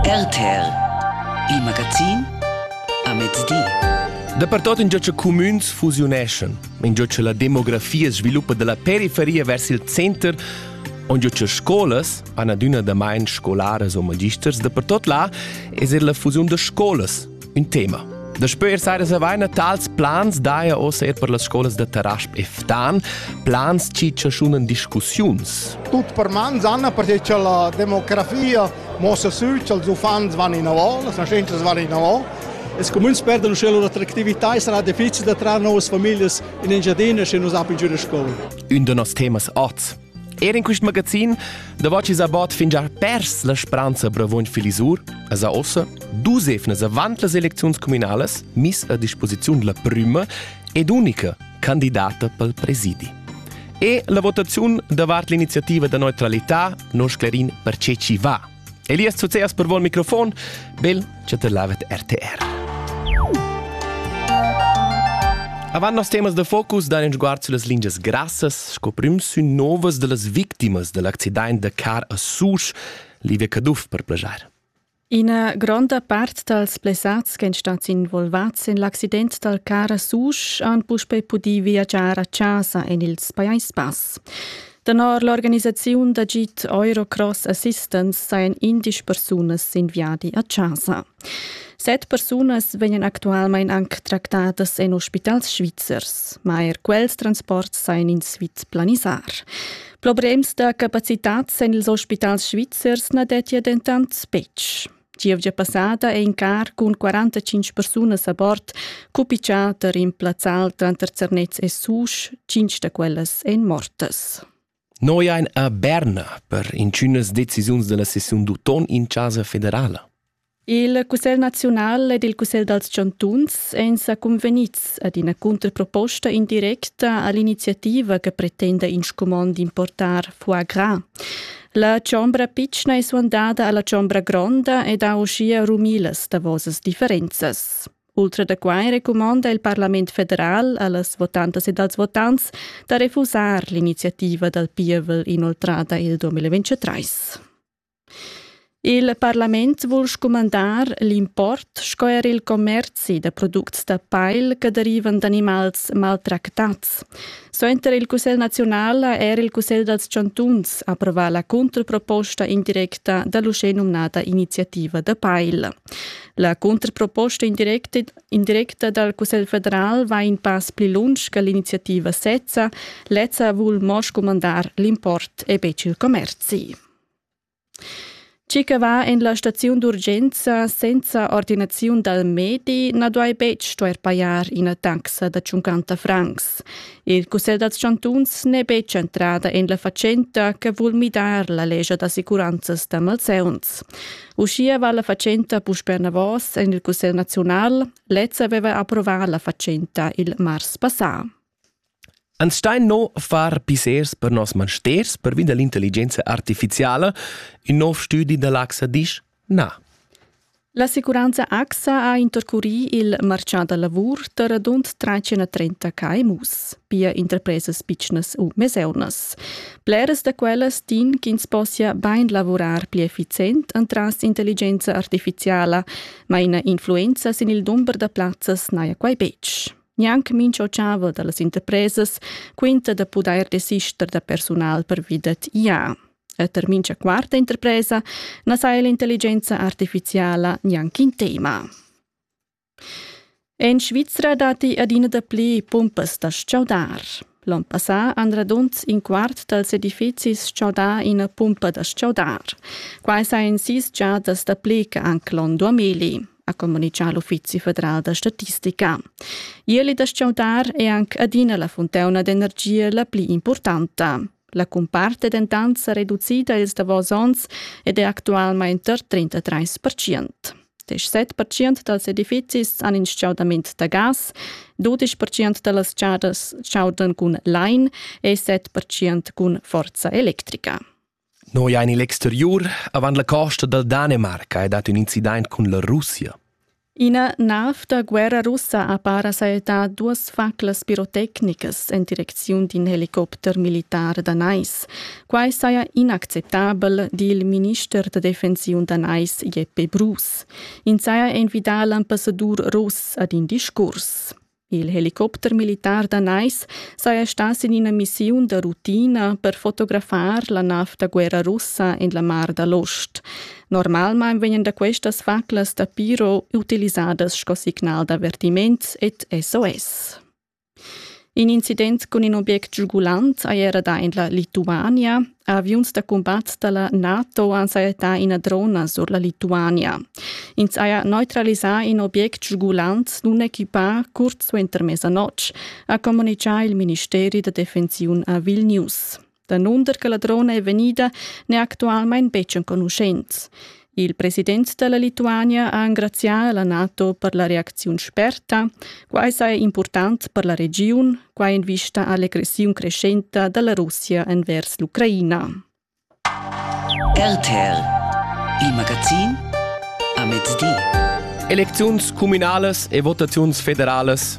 RTL, il magazin a mezdi. Dapertot in già cumüns fusiuneschan. In già la demografia sviluppa della periferia vers il center, on già scolas, han adüna damain scolaras o magisters, dapertot là es er la fusiun da scolas un tema. Daspö ir saira savaina tals plans daja ossa er per las scolas da Tarasp e Ftan, plans chi chaschunan discussiuns. Tut per mans, Anna, perché cha la demografia mossa sül cha'ls uffants van inavò, las nascentas van inavò. Els comuns perdan uschè lur attractività e sarà difficil da trar noas famiglias in Engiadina sche nus apin giù da scola. Un da noss temas oz Er in quest magazin da vocis a bot fin già pers la speranza bravoin Filisur, as a ossa dus efnas avant las elecziuns communales mis a disposiziun la prima ed unica candidata pel presidi. E la votaziun davart l'iniziativa da neutralità non sclerin per ce ci va Elias Zuzeas per vol microfon, bel chatelavet RTR. Avant nos temas de focus dan in sguard sulle lingias grassas, sco prim sü novas de las victimas del accident de car a Susch, Livia Caduff per plagiar. Ina gronda part dals blessats che èn stati involvats en l'accident dal car a Susch han puspei pudì viagiar a chasa en ils Pajais Bass. Tenor l'organisaziun d'agid Eurocross Assistance sajan indisch persunas sin viadi a chasa. Set persunas vegnan actualmein anc tractadas en ospitals svizzers, ma er quels transports sajan in Sviz planisar. Problems da capacitads en ils ospitals svizzers na dettia dentant betg. Gievgia passada è in car cun 45 persunas a bord cupitgà da rimplazzar tranter Zernez e Susch, cinc da quellas èn mortas. Noi ein a Berna per intünas decisiuns della sessiun d'uton in Casa Federala. Il Cussegl nazional ed il Cussegl dals chantuns èn sa convenids ad ina cunterproposta indirecta all'iniziativa che pretenda in scumond d'importar foie gras. La chombra pitschna è suandada alla chombra gronda ed ha uschia rumilas davosas differenzas. Ultra da quai recumonda il Parlament federal allas votantas ed als votants da refusar l'iniziativa dal pievel inoltrada il 2023. Il parlament vul scumandar l'import sco er il commerzi da products da pail che derivan d'animals maltractats Suenter il Cussegl naziunal ha er il Cussegl dals chantuns approvà la controproposta indirecta da l'uschè nomnada iniziativa da Peil. La controproposta indirecta dal Cussegl federal va in pass pli lunsch che l'iniziativa sezza, lezza vul mo scumandar l'import e betg il commerzi. Chi che va in la staziun d'urgenza senza ordinaziun dal medi na duai betg stuair pajar ina taxa da 50 francs. Il Cussegl dals chantuns n'è betg entrada en la fatschenta che vul midar la lescha d'assicuranzas da malsauns. Uschia va la fatschenta puspè enavos en il Cussegl naziunal. Lez aveva approvà la fatschenta il mars passà. Ans stain no far pissers per nos mansters pervi da l'intelligenza artificiala. In nov stüdi da l'AXA disch na. L'assicuranza AXA ha intercurì il marchà da lavur da radund 330 KMUs, pia interpresas pitschnas u meseunas. Bleras da quellas din ch'ins possia bain lavurar pli effizient entras intelligenza artificiala, ma ina influenza sin il dumber da plazzas n'haja quai betg. Gnanc mincha otschava da las interpresas quinta da pudair desister da persunal pervi dad IA. E tar mincha quarta interpresa na saja l'intelligenza artificiala gnanc in tema. En Svizra datti adina dapli pumpas da stgaudar. L'on passà han radund in quart dals edifizis stgaudà ina pumpa da stgaudar. Quai sajan sis giadas dapli che anc l'on 2000. ha communicà l'Uffizi federal da statistica. Ieli da sciaudar è anche adina la fontauna d'energia la pli importante. La comparte è dentant sa reducida ils davos onns ed è actualmente tar 33%. 17% dals edifizis han in schaudament da gas, 12% da las chadas chaudan cun lain e 7% cun forza electrica. Noi ein igl exteriur avant la costa dal Danemarca ed hat ün incident cun la Russia. Ina nav da guerra russa ha para sajettà duas faclas pirotecnicas en direcziun d'in helicopter militar da Nais. Quai saja inacceptabel, di il minister da defensiun da Nais Jeppe Bruus. Ins haja envidà l'ambassadur russ ad in discurs. Il helicopter militar danais saja stà sin ina missiun da rutina per fotografar la nav da guerra russa en la Mar da l'Ost. Normalmain vegnan da questas faclas da piro utilisadas sco signal d'avertiment ed SOS. In incident cun in obiect giugulant haja era dà en la Lituania. Aviuns da cumbat da la NATO han sajettà ina drona sur la Lituania. Ins haja neutralisà in obiect sgulant nunequipà curt suenter mesanotg, ha communitgà il ministeri da defensiun a Vilnius. Danunder che la drona è vegnida n'è actualmain betg enconuschent. Il president da la Lituania ha engrazià la NATO per la reacziun sperta. Quai saja impurtant per la regiun, quai en vista a l'egressiun crescenta da la Russia envers l'Ucraina. RTL, il magazin a mezdi. Elecziuns cumünalas e votaziuns federalas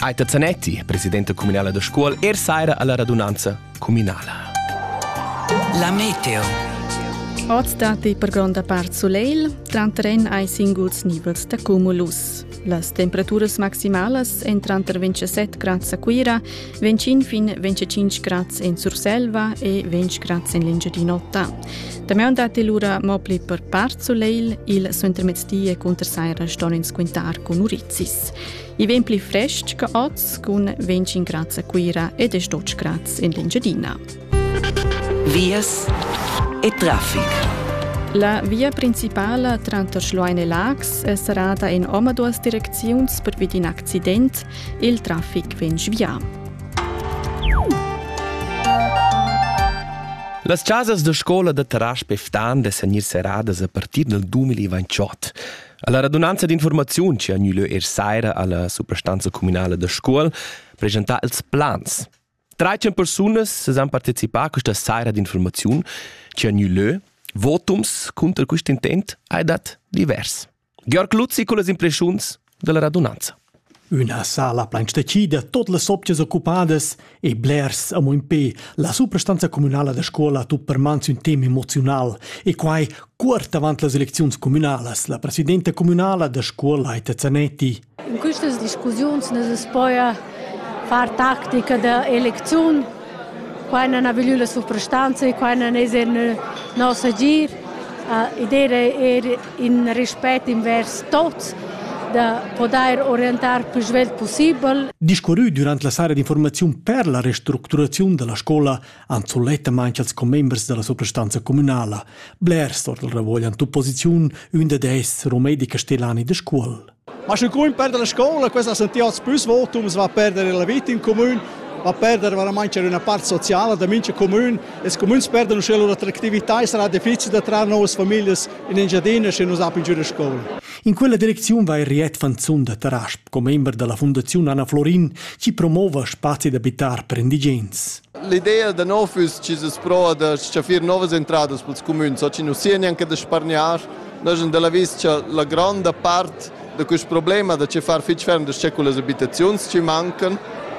Aita Zanetti, presidente comunale da scuol, er saira alla radunanza comunala. La meteo. Oz dati per gronda part soleil, tranterren ai singuls nivels da cumulus. Las temperaturas maximalas en tranter 27 grads a Cuira, 25 fin 25 grads en Surselva e 20 grads en l'Engiadin'Ota. Damian dati lura mo pli per part soleil, il suentermezdi e cunter saira ston ins quintar con Urizis. I vegn pli frestg che oz cun 25 grad a Cuira ed è 12 grad in l'Engiadina. Vias e traffic. La via principala tranter Schloein e Lax è serrada in omaduas direcziuns per in accident. Il traffic vegn svià. Las chasas da scola da Tarasp e Ftan de senir serradas a partir dal 2028. Alla radunanza d'informaziun che ha gnü er saira alla suprastanza communale da scuol presentà ils plans. 13 persunas han partecipà a questa saira d'informaziun che ha gnü votums contro quest intent hai dat divers. Georg Luzzi con las impressiuns della radunanza. Üna sala plain stecida, tot las sopchas occupadas e blers amo impè. La suprastanza cumünala da scuola ha tut per man sün tema emoziunal e quai cuort avant las elecziuns cumünalas. La presidenta cumünala da scuola Aita Zanetti. In quistas discussiuns nes es poi a far tactica da elecziun Quai non ha voglü la suprastanza e quai non es eir nos agir. Uh, Idea è er in rispett invers tots da podair orientar più svelt possibel. Discurrü durant la sara d'informaziun per la restructuraziun della scola han sulettamain als commembers della suprastanza communala. Blers or del ravogl han opposiziun, ün dad esser Rumedi Castellani de Scuol. Ma sche cumin perder la scola, questa ha sentì oz pus votums, va a perder la vita in comune, va a perder veramente c'è una parte sociale da mincha comune e i comuns perdono sche l'attractività sarà difficile da trarre nuove famiglie in Engiadina se non sappiano giocare a scuola. In quella direczione va Riet Fanzun da Tarasp, commember della Fondazione Anna Florin, chi promova spazi d'abitar per indigens. L'idea da nov füss chi es pro da s-chaffir novas entradas pels cumüns, ho chi nu sia neanche da spargnar. Noi sun da l'avis cha la gronda part da quist problema da che far fich ferm da s-che cullas abitaziuns chi mancan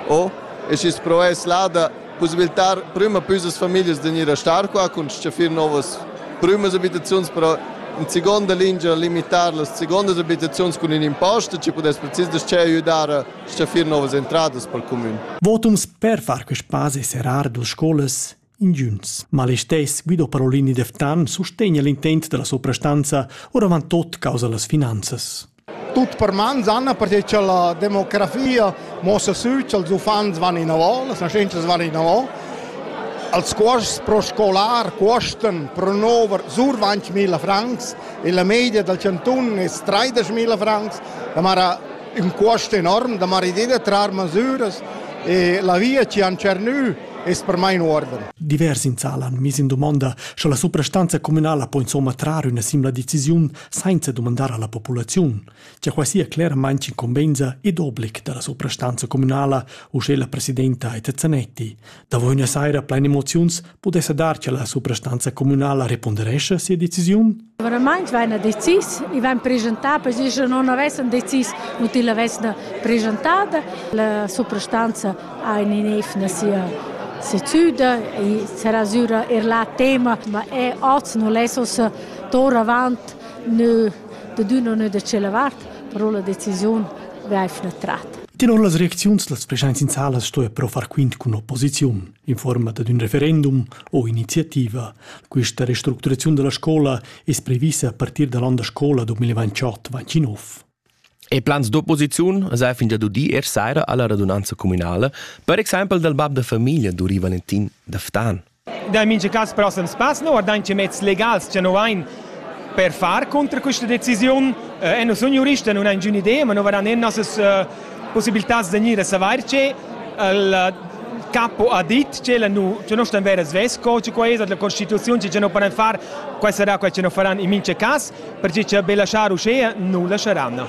o e schi's pro es là da pussibiltar prüma püsas famiglias da gnir a star qua cun s-chaffir novas prümas abitaziuns, però in seconda lingia limitar las secondas abitaziuns cun ün impost, chi pudess precis da s-che aiüdar Stgaffir novas entradas pel cumün. Votums per far que spazi e serrar duas scolas ingiunts. Ma listess Guido Parolini Deftan sustegna l'intent della soprastanza, oravant tot causa las finanzas. Tut per mans, Anna, perché che la demografia mossa sü ch'ils uffants van inavò, las nascentas van inavò. Als cuosts pro scolar cuostan pro nover sur 20.000 francs e la media dal cantun es 30.000 francs. La mara ün cuost enorm da maridé da trar masüras e la via chi han tschernü es per mai in uorden. Divers in sal han miss in dumonda, sche la suprastanza communala po insomma trar üna simla decisiun sainza dumandar alla populaziun, che quai sia cleramaing incumbenza ed oblig da la suprastanza communala, usche la presidenta Eta Zanetti, Davo üna saira plain emoziuns pudessa dar che la suprastanza communala reponderescha sia decisiun? Verament vaina decis, i van presentar per si sche non avessan decis u til avesna presentada. La suprastanza ha in nef na sia sezzüda e se rasura er la tema, ma e oz non lessos tor avant ne de d'una ne de cela vart, però la decisiun vaifna tratta. Tenor las reacziuns las preschaints in sala stoja però far quint cun opposiziun in forma dad ün referendum o iniziativa. Questa restructuraziun della scola es previssa a partir dall'on da scola 2028-29. E plans d'opposiziun sa fin da dudi er saira alla radunanza comunale, per exempel dal bab da famiglia du Valentin da Ftan. Da mincha cas prossem spass no, guardand che mezs legals cha no vain per far contra questa decisiun. Eh, e noi sun juristi, non ha ingün idea, ma no varan eir nossas eh, possibiltats da gnir a savair che il capo ha dit che la nu che non stan vera svesco che quai è la costituzione che non poran far quai sarà quai che non faran in mince cas perché che be lasciar uscea nu lasceranno